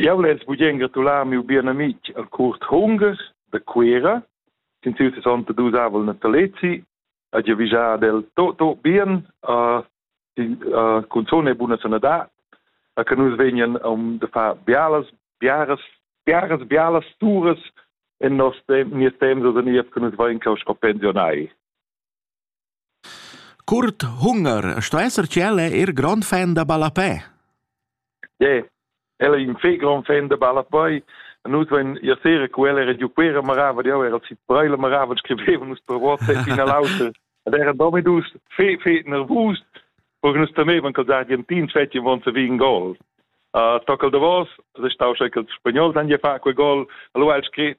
Jau less bugen gratular miu bien amic al Kurt Hunger de Cuera, sin siu 62 avel natalezi, a giavischar ad el tot, tot bien, a, a cunzone e buna sanadad, a che nus vegnan um de far bialas, biaras, biaras, bialas turas en nos tem, nies temps oder nief che nus vain cau sco pensionai. Curt hunger sto esser che ella è er grond fan da ballapè. Yeah, ella è in fei grond fan da ballapè. Nus vein ia sera cu ella era giuquera marava, jau era sit breila marava, scriveva nus per WhatsApp in all'auter. Ed era domidus fe fe nervus, porque nus temevan che els argentins fetien von se in gol. Uh, toccal davos, se stau che els spagnol dan je fa quel gol, allora el scrit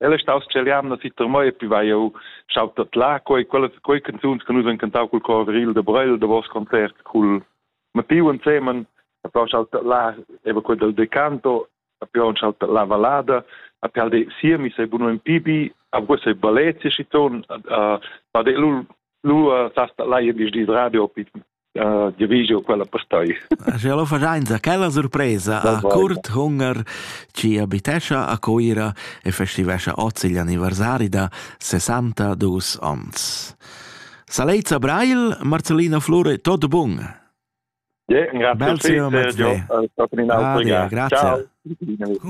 El è staus cel jamna si Termoi e poi vai eu schautat là quei quelle quei canzuns che nus han cantau col cor viril de Breil de vos concert col Mattiu insemen a poi schautat là eva quel del decanto a poi schautat la valada a poi de siemi sei buno in pibi a voi sei ballet si ton a de lu lu sasta là je dis radio op Uh, ja vegio quella postai. Sche lo fajainza quella surpresa a curt hunger ci abitescha a Coira e festivescha ozzi gli anniversari da 62 ons. Saleizza Brail, Marcellina Flure, tot bun. Ja, grazie. Bel grazie. Ciao. Grazie. Ciao.